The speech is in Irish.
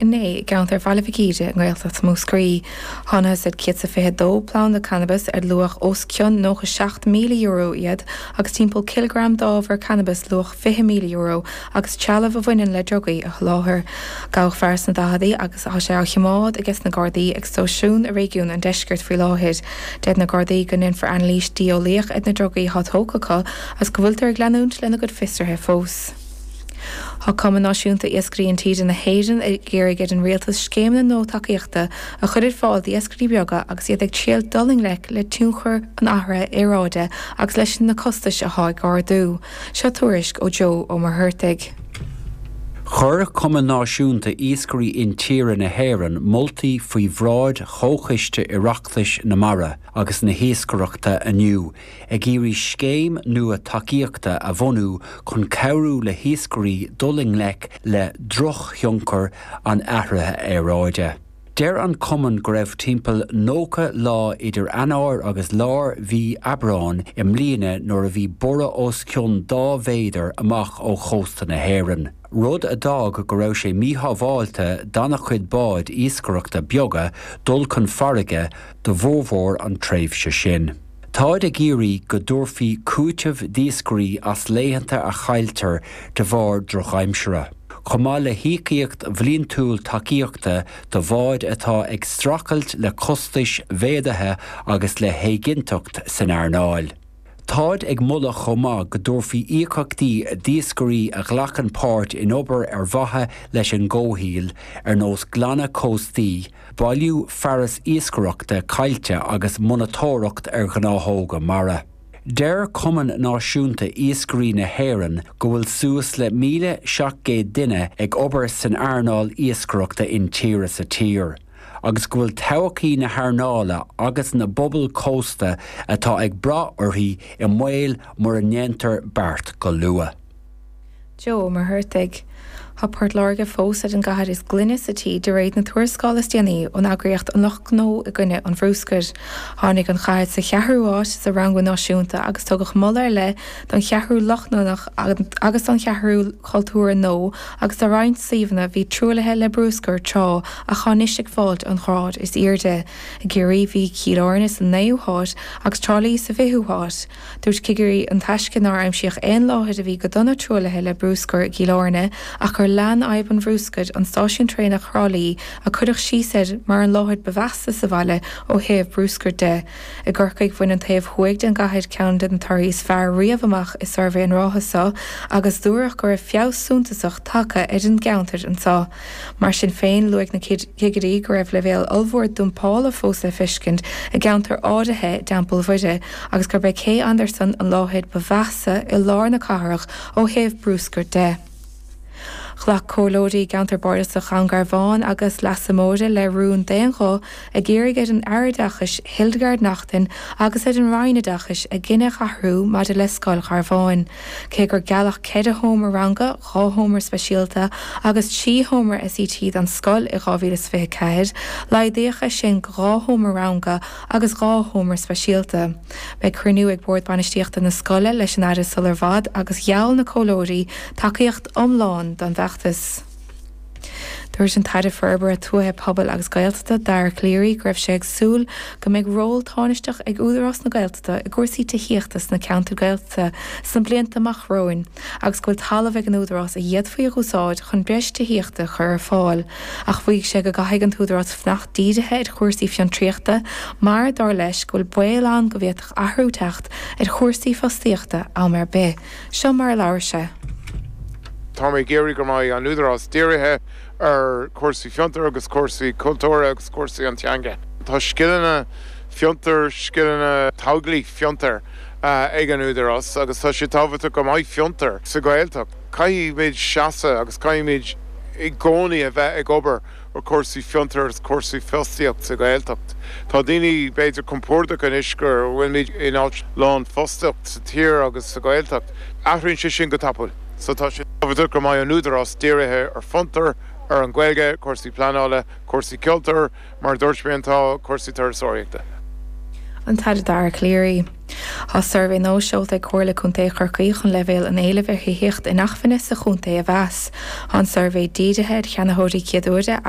Inné, i gceantar Bhaile Mhic Íde i nGaeltacht Mhúscraí, thánathas ar 122 planda cannabais ar luach os cionn €97,000 iad agus timpeall cileagram d'ábhar cannabais luach €20,000 agus trealamh a bhaineann le drugaí a sholáthar. Gabhadh fear sna daicheadaí agus tá sé á chimeád ages na Gardaí ag stáisiún i réigiún an Deiscirt faoi láthair. Deir na Gardaí go ndeinfear anailís dlí-eolaíoch ar na drugaí atá tógtha acu agus go bhfuiltear ag leanúint lena gcuid fiosraithe fós. Tá Cumann Náisiúnta Iascairí Intíre na hÉireann ag iarraidh ar an Rialtas scéimeanna nua tacaíochta a chur ar fáil d'iascairí beaga agus iad ag triail dul i ngleic le tionchar an athraithe aeráide agus leis na costais atá ag ardú. Seo tuairisc ó Joe Ó Muircheartaigh. Chuir Cumann Náisiúnta Iascairí Intíre na hÉireann moltaí faoi bhráid Chomhchiste Oireachtais na Mara agus na hIascaireachta inniu, Ag iarraidh scéim nua tacaíochta a bhunú chun cabhrú le hiascairí dul i ngleic le drochthionchar an athraithe aeráide. Deir an Cumann go raibh timpeall 90 lá idir Eanáir agus lár mhí Aibreáin i mbliana nuair a bhí borradh os cionn dhá mhéadar amach ó chósta na hÉireann, rud a d'fhág go raibh sé míshábháilte d'an-chuid báid iascaireachta beaga dul chun farraige do bhformhór an tréimhse sin. Táid ag iarraidh go dtabharfaí cúiteamh d'iascairí as laethanta a chailltear de bharr drochaimsire, chomh maith le híocaíocht bhliantúil tacaíochta do bháid atá ag streachailt le costais mhéadaithe agus le héiginnteacht san earnáil. Táid ag moladh chomh maith go dtabharfaí íocaíochtaí d'iascairí a ghlacann páirt in obair ar mhaithe leis an gcomhshaoil, ar nós glanadh cóstaí, bailiú fearas iascaireachta caillte agus monatóireacht ar ghnáthóga mara. Deir Cumann Náisiúnta Iascairí na hÉireann go bhfuil suas le 1,700 duine ag obair san earnáil iascaireachta intíre sa tír agus go bhfuil todhchaí na hearnála agus na bpobal cósta atá ag brath uirthi i mbaol mura ndéantar beart go luath. Joe Ó Muircheartaigh, Tá Port Láirge fós ar an gcathair is glaine sa tír de réir na tuarascála is déanaí ón eagraíocht An Lucht Gnó i gCoinne an Bhruscair. Tháinig an chathair sa cheathrú háit sa rangú náisiúnta agus tugadh moladh ar leith don Cheathrú Lochlannach agus don Cheathrú Chultúrtha Nua agus do roinnt suíomhanna a bhí truaillithe le bruscar tráth ach atá anois ag fáilt an ghráid is airde. I gCiarraí bhí Cill Airne sa naoú háit agus Trá Lí sa bhfichiú háit. Dúirt cigirí an Taisce nár aimsíodh aon láthair a bhí go dona truaillithe le bruscar i gCill Airne ach gur lean fadhb an bhruscair i stáisiún traenach Thrá Lí a cuireadh síos air mar an láthair ba mheasa sa bhaile ó thaobh bruscair de. I gCorcaigh, bhain an taobh thuaidh den gcathair ceann de na torthaí is fearr riamh amach i suirbhé na ráithe so agus dúradh go raibh feabhas suntasach tagtha ar an gceantar ansan. Mar sin féin, luaigh na cigirí go raibh leibhéal ollmhór dumpála fós le feiscint i gceantar áirithe i dTeampall Mhuire agus gurb é Cé Andarsan an láthair ba mheasa i lár na cathrach ó thaobh bruscair de. Ghlac comhairleoirí i gceantar Bardasach Dhún Garbhán agus Leasa Móire le rún d'aon ghuth ag iarraidh ar an Aire Oideachais Hildegarde Naughton agus ar an Roinn Oideachais a gcinneadh a athrú maidir le Scoil Gharbháin, cé gur gealladh ceithre sheomra ranga dhá sheomra speisialta agus trí sheomra SET don scoil i 2024, laghdaíodh é sin go dhá sheomra ranga agus dhá sheomra speisialta. Beidh cruinniú ag Bord Bainistíochta na scoile leis an Aire sular bhfad agus gheall na comhairleoirí tacaíocht iomlán don bhfeachtas. Dúirt an tAire Forbartha Tuaithe Pobail agus Gaeltachta, Dara Calleary, go raibh sé ag súil go mbeidh ról tánaisteach ag Údarás na Gaeltachta i gcúrsaí tithíochta sna ceantair Gaeltachta sna blianta amach romhainn. agus go bhfuil talamh ag an Údarás a d'fhéadfaí a dh'úsáid chun breis tithíochta a chur ar fáil, ach mhaígh sé go gcaithfidh an tÚdarás fanacht dírithe ar chúrsaí fiontraíochta mar, dar leis, go bhfuil baol ann go bhféadfadh athrú teacht ar chúrsaí fostaíochta am ar bith. Seo mar a labhair sé. Tá mé ag iarraidh go mbeidh an Údarás dírithe ar chúrsaí fiontar agus cúrsaí cultúrtha agus cúrsaí an teanga. Tá scileanna fiontar, scileanna tógála fiontar, ag an Údarás agus tá sé tábhachtach go mbeidh fiontar sa Ghaeltacht. Caithfimid seasamh agus caithfimid i gcónaí a bheith ag obair ar chúrsaí fiontar agus cúrsaí fostaíochta sa Ghaeltacht. Tá daoine b'fhéidir compordach anois go bhfuilimid in áit lánfhostaíocht sa tír agus sa Ghaeltacht. Athraíonn sé sin go tapaidh so tá sé tábhachtach go mbeidh an Údarás dírithe ar fiontar, ar an Ghaeilge, cúrsaí pleanála, cúrsaí cultúr, Mar a dúirt mé tá cúrsaí turasóireachta. An tAire Dara Calleary. Tá suirbhé nua seolta ag Comhairle Contae Chorcaí chun leibhéal an éilimh ar thithíocht inacmhainne sa chontae a mheas. Tá an suirbhé dírithe ar cheannaitheoirí céad uaire agus.